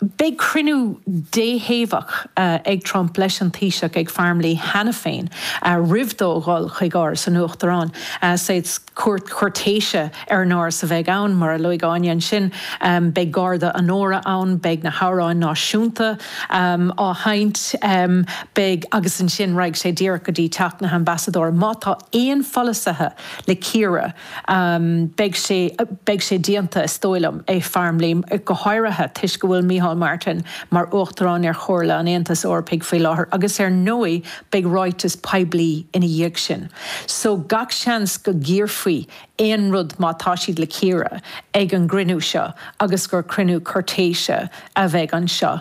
Beidh cruinniú déthaobhach ag Trump leis an Taoiseach ag Farmleigh cheana féin roimh dó dhul chuig Áras an Uachtaráin. Saghas cuairt chúirtéise ar an Áras a bheidh ann, mar a luaigh Áine. Ansin beidh garda onóra ann, beidh na hamhráin náisiúnta á sheinnt, beidh. agus ansin raghaidh sé díreach go dtí Teach na hAmbasadóra. Má tá aon pholasaithe le cíoradh, Beidh sé, beidh sé déanta is dóigh liom i Farmleigh go háirithe toisc go bhfuil Micheál Martin mar Uachtarán ar Chomhairle an Aontais Eorpaigh faoi láthair agus ar ndóigh beidh ráiteas poiblí ina dhiaidh sin. So gach seans go gcíorfaí aon rud má tá siad le cíoradh ag an gcruinniú seo agus gur cruinniú cúirtéise a bheidh anseo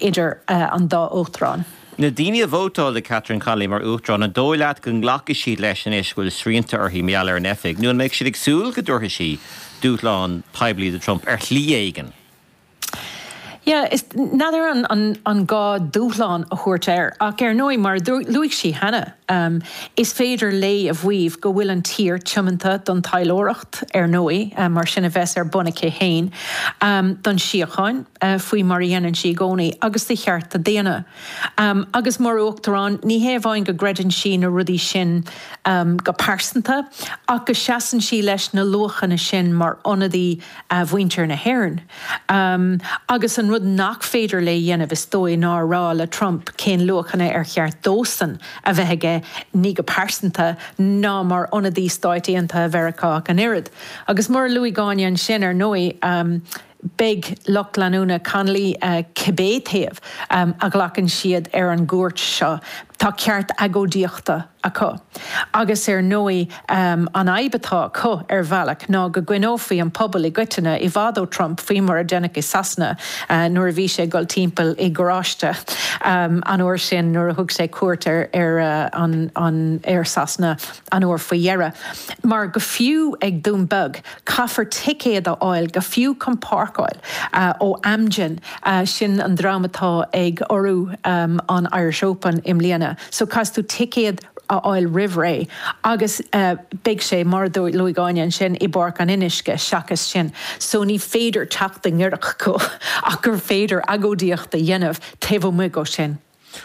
idir an dá Uachtarán. Na daoine a vótáil do Catherine Connolly mar Uachtarán, an dóigh leat go nglacfaidh siad leis anois go bhfuil srianta uirthi mar gheall ar an oifig, nó an mbeidh siad ag súil go dtabharfaidh sí dúshlán poiblí do Trump ar shlí éigin? Yeah, n'fheadar an gá dúshlán a thabhairt air, ach ar ndóigh, mar a luaigh sí cheana, is féidir léi a mhaíomh go bhfuil an tír tiomanta don taidhleoireacht, ar ndóigh, mar sin a bheas ar bun aici féin, don síocháin. faoi mar a dhéanann sí i gcónaí, agus do chearta daonna. Agus mar Uachtarán, ní hé amháin go gcreideann sí na rudaí sin go pearsanta, ach go seasann sí leis na luachanna sin mar ionadaí mhuintir na hÉireann. Agus an rud nach féidir léi a dhéanamh, is dóigh, ná a rá le Trump cén luachanna ar cheart dósan a bheith aige, ní go pearsanta, ná mar ionadaí Stáit Aontaithe Mheiriceá ach an oiread. Agus mar a luaigh Áine ansin, ar ndóigh, Beidh lucht leanúna Connolly, cibé taobh a ghlacann siad ar an gcuairt seo, tá ceart agóidíochta acu. Agus ar ndóigh an fhadhb atá acu, ar bhealach, ná go gcoinneofaí an pobal i gcoitinne i bhfad ó Trump, faoi mar a deineadh i Sasana nuair a bhí sé ag dul timpeall i gcarráiste an uair sin nuair a thug sé cuairt ar Sasana. an uair faoi dheireadh, mar go fiú ag Dún Beag, caithfear ticéad a fháil, go fiú chun páirceáil, ó Amgen, sin an dream atá ag urrú an Irish Open i mbliana, so caithfidh tú ticéad a fháil roimh ré agus beidh sé, mar a luaigh Áine ansin, i bPáirc an Fhionnuisce seachas sin, so ní féidir teacht i ngiorracht dó ach gur féidir agóidíocht a dhéanamh taobh amuigh dhe sin.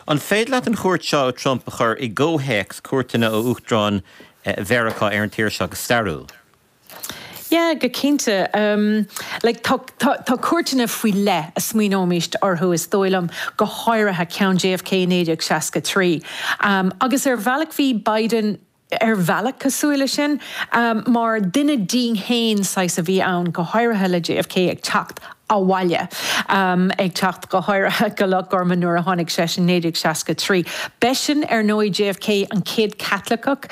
An féidir leat an chuairt seo ó Trump a chur i gcomhthéacs cuairteanna ó Uachtaráin Mheiriceá ar an tír seo go stairiúil? Yeah, go cinnte. Like, tá cuairteanna faoi leith a smaoineoimis orthu, is dóigh liom, go háirithe ceann JFK i 1963. Agus ar bhealach bhí Biden. ar bhealach cosúil leis sin. Mar duine dínn fhéin saghas a bhí ann, go háirithe le JFK ag teacht abhaile, ag teacht go háirithe go Loch Gorman nuair a tháinig seisean 1963. B'eisean ar ndóigh JFK an chéad Chaitliceach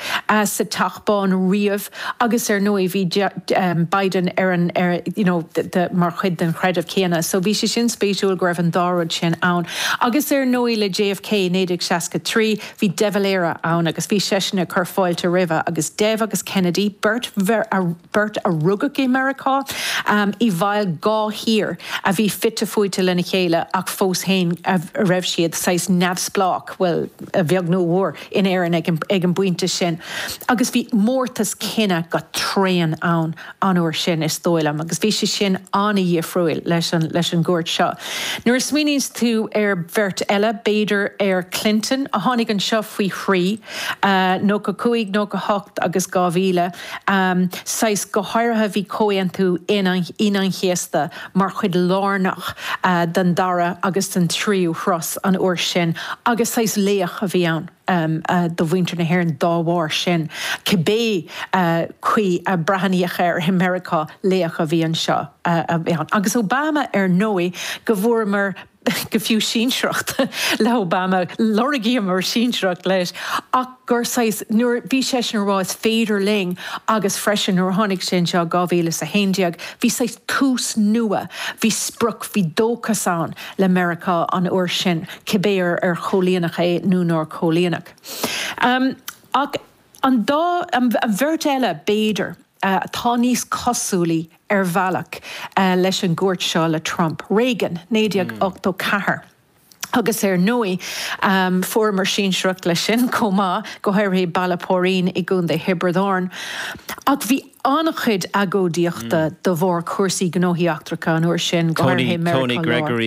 sa Teach Bán riamh agus ar ndóigh bhí Biden ar an, you know, the, mar chuid den chreideamh céanna. So bhí sé sin spéisiúil go raibh an dá rud sin ann. Agus ar ndóigh le JFK 1963, Bhí De Valera ann agus bhí seisean ag cur fáilte roimhe agus Dev agus Kennedy, beirt, beirt a rugadh i Meiriceá, i bhfeighil dhá thír a bhí fite fuaite lena chéile ach fós féin a raibh siad saghas neamhspleách, bhuel, a bheag nó a mhór, in Éirinn ag an bpointe sin. Agus bhí mórtas cine go tréan ann. an uair sin, is dóigh liom, agus bhí sé sin an-dhifriúil leis an gcuairt seo. Nuair a smaoiníonns tú ar bheirt eile, b'fhéidir ar Clinton, a tháinig anseo faoi thrí, nócha cúig, nócha a hocht agus dhá mhíle, saghas, go háirithe bhí Comhaontú Aoine an Chéasta mar chuid lárnach den dara agus den tríú turas an uair sin agus saghas laoch a bhí ann. do mhuintir na hÉireann dá bharr sin, cibé caoi a breathnaíodh air i Meiriceá, laoch a bhí anseo a bhí ann. Agus Obama ar ndóigh go bhfuaireamar go fiú sinsearacht le Obama, lorgaíomar sinsearacht leis ach gur saghas, nuair a bhí seisean ag rá is féidir linn agus freisin nuair a tháinig sé anseo i 2011 bhí saghas tús nua, bhí sprioc, bhí dóchas ann le Meiriceá an uair sin. cibé ar chomhlíonadh é nó nár comhlíonadh. Ach an dá, an bheirt eile, b'fhéidir, atá níos cosúlaí, ar bhealach, leis an gcuairt seo le Trump. Reagan, 1984. Agus ar ndóigh, fuaireamar sinsearacht leis sin chomh maith, go háirithe Béal Átha Póirín i gContae Thiobraid Árann. Ach bhí an-chuid agóidíochta de bharr cúrsaí gnóthaí eachtracha an uair sin, go háirithe i Meiriceá Láir.